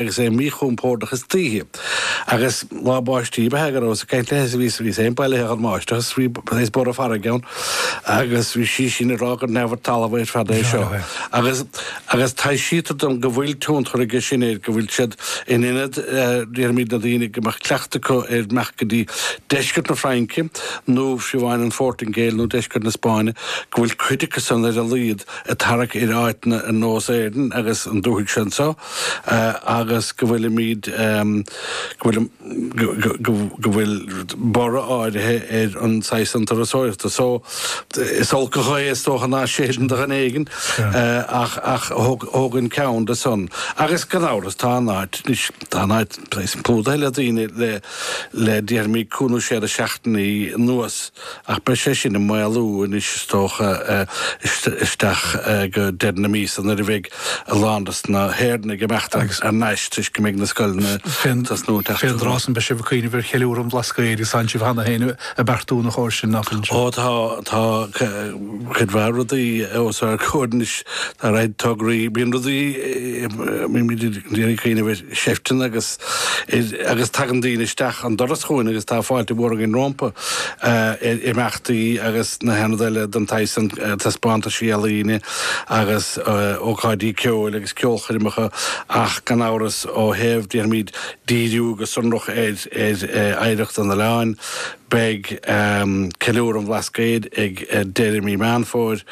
agus é míchompordach istoíche, agus lá báistí a bheith aige, go rabhas ag caint léi is í féin bailithe den mbáisteach is bhí saghas borradh farraige ann agus bhí sí sin ag rá gur neamh ar talamh ar fad é seo. Agus agus taibhsítear dom go bhfuil tionchar aige sin air, go bhfuil siad in ionad, déarfaimid, na daoine go mbeadh cleachtadh acu ar imeacht go dtí deisceart na Fraince nó síos faoin bPortaingéil nó deisceart na Spáinne, go bhfuil cuid acu san ar a laghad ag tarrac ar áiteanna ar nós Éirinn agus an dúthaigh seo anseo. agus go bhfuilimid, go bhfuil, go bhfuil borradh áirithe ar an saghas san turasóireachta so is olc an ghaoth is dócha ná séideann do dhuine éigin ach tógaim ceann de san agus gan amhras tá an áit, anois tá an áit plúdaithe le daoine le déarfaimid cúig nó sé de sheachtainí anuas. Ach beidh sé sin ag maolú anois is dócha, isteach go deireadh na míosa nuair a bheidh a lán de na hÉireannaigh ag imeacht ar ais toisc go mbeidh na scoileanna ag tosnú. Fén dtráth san beidh sibh ag cuimhneamh ar cheiliúradh an Bhlascaoid agus tánn sibh cheana féin ag beartú na chóir sin, nach bhfuil? Ó tá, tá cuid mhaith rudaí os ár gcomhair anois, tá ard-tograí, bíonn rudaí, bímid ag cuimhneamh ar, sheifteanna agus agus tagann daoine isteach an doras chugainn agus tá fáilte mhór againn rompu ar imeachtaí agus nó aon ní eile den tsaghas sin, taispeántaisí ealaíne agus ócáidí ceoil agus ceolchoirmeacha ach gan amhras ó thaobh, déarfaimid, díriú go sonrach ar ar oidhreacht an oileáin. Beidh Ceiliúradh an Bhlascaoid ag deireadh mí Meán Fómhair.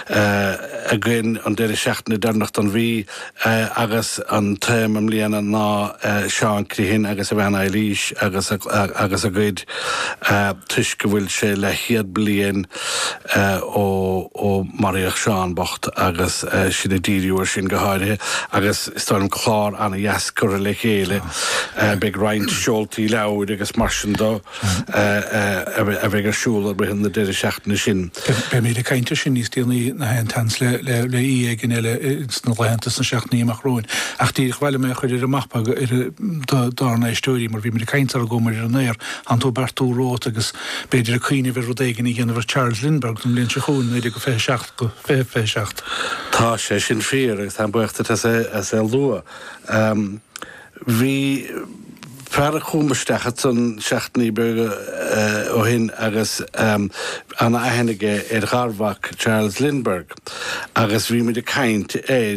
againn an deireadh seachtaine deireanach den mhí agus an téama i mbliana ná Seán an Chriothain agus a bhean Eibhlís agus agus a gcuid toisc go bhfuil sé leathchéad bliain ó ó maraíodh Seán bocht agus sinn ag díriú ar sin go háirithe agus is dóigh liom clár an-deas curtha le chéile beidh roinnt seoltaí leabhair agus mar sin de. a bheidh ar siúl i rith na deireadh seachtaine sin. Beimid ag caint air sin níos déanaí gach aon seans le aoi éigin eile sna laethanta is na seachtainí amach romhainn. Ach díreach ba mhaith liom é a chur ar an mapa dár n-éisteoirí mar bhí mé ag caint leat roimh imeacht ar an aer tánn tú ag beartú romhat agus b'fhéidir ag cuimhneamh ar rud éigin a dhéanamh ar Charles Lindbergh don bhliain seo chugainn 1927 go 2027. Tá sé sin fíor agus táim buíoch duit as é a lua. Bhí fear chugam isteach ansan seachtainí beaga ó shin agus an-aithne aige ar gharmhac Charles Lindbergh agus bhí muid ag caint air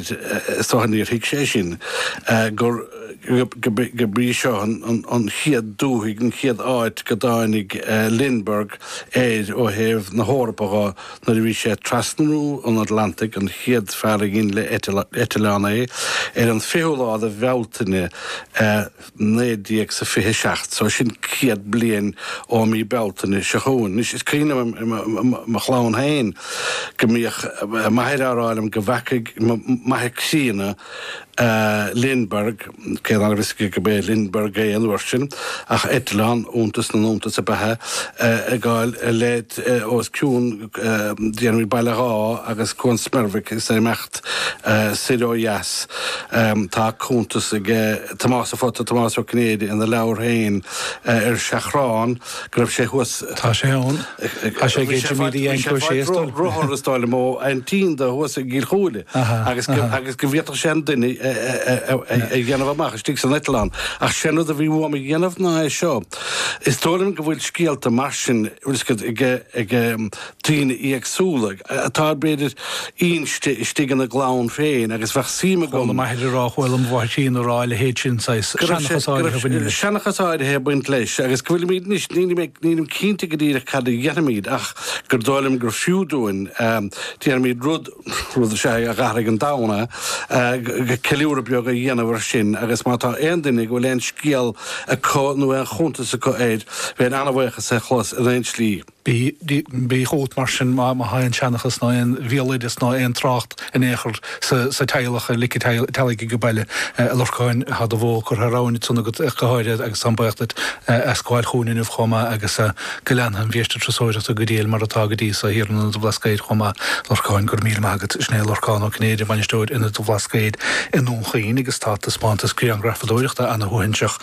so níor thuig sé sin gur gurb í seo an chéad dúthaigh, an chéad áit go dtáinig Lindbergh air ó thaobh na hEorpa dho. Nuair a bhí sé ag trasnú an Atlantaigh, an chéad fear a dhein le eitleán é, ar an 20ú lá de Bhealtaine 19 sa 27, so sin 100 bliain ó mhí Bealtaine seo chugainn. Anois is cuimhin liom i mo chlann féin go mbíodh m'athair á rá liom go bhfeacaigh m'athair críonna Lindbergh, cé ná raibh a fhios aige go mb'é Lindbergh é an uair sin, ach eitleán, iontas na n-iontas ab ea é, ag gabháil i leith os cionn Dhéanmhaigh Baile Dháith agus Cuan Smerbhic is é ag imeacht soir ó dheas. Tá cuntas ag Tomás a' Phota, Tomás Ó Cinnéide, ina leabhar féin Ar Seachrán, go raibh sé thuas. Tá sé ann. Tá sé ag Jimí D Fhaightear sé faic ro rothar is dóigh liom ó aintín dó thuas i gCill Chúile agus go agus go bhféadfadh sé an duine a dhéanamh amach istigh san eitleán. Ach sé an rud a bhí uaim a dhéanamh ná é seo. Is dóigh liom go bhfuil scéalta mar sin, bhfuil scéalta ag ag daoine éagsúla atá b'fhéidir inste istigh ina gclann féin agus bheadh suim agam. Chuala m'athair a rá, chuala mo mháthair féin a rá a leithéid sin saghas, go raibh sé, seanchas go áirithe a raibh bhaineann sé, leis. seanchas áirithe ag baint leis agus go bhfuilimid anois, nílim ag, nílim cinnte go díreach cad a dhéanfaimid ach gur dóigh liom gur fiú dúinn, déarfaimid rud, rud is ea é, a dh'athraigh an domhan, a, ceiliúradh beag a dhéanamh air sin agus má tá aon duine go bhfuil aon scéal acu nó aon chuntas acu air, bheinn an-bhuíoch as é a chlos in aon tslí. Bíodh amhlaidh, mar sin, má thá aon seanchas ná aon bhéaloideas ná aon trácht in aon chor sa teaghlach ar lic an teallaigh ag baile, a Lorcáin, thá do bhó curtha thar abhainn ansan agat go háirithe agus táim baoch duit as gabháil chugainn inniu chomh maith agus go leanfadh an bhiaiste turasóireachta go diail mar atá go dtí so thiar in Ionad an Bhlascaoid chomh maith. Lorcáin, Go raibh míle maith agat. Sin é Lorcán Ó Cinnéide, Bainisteoir Ionad an Bhlascaoid i nDún Chaoin agus tá taispeántas griangrafadóireachta ana-shuaithinseach,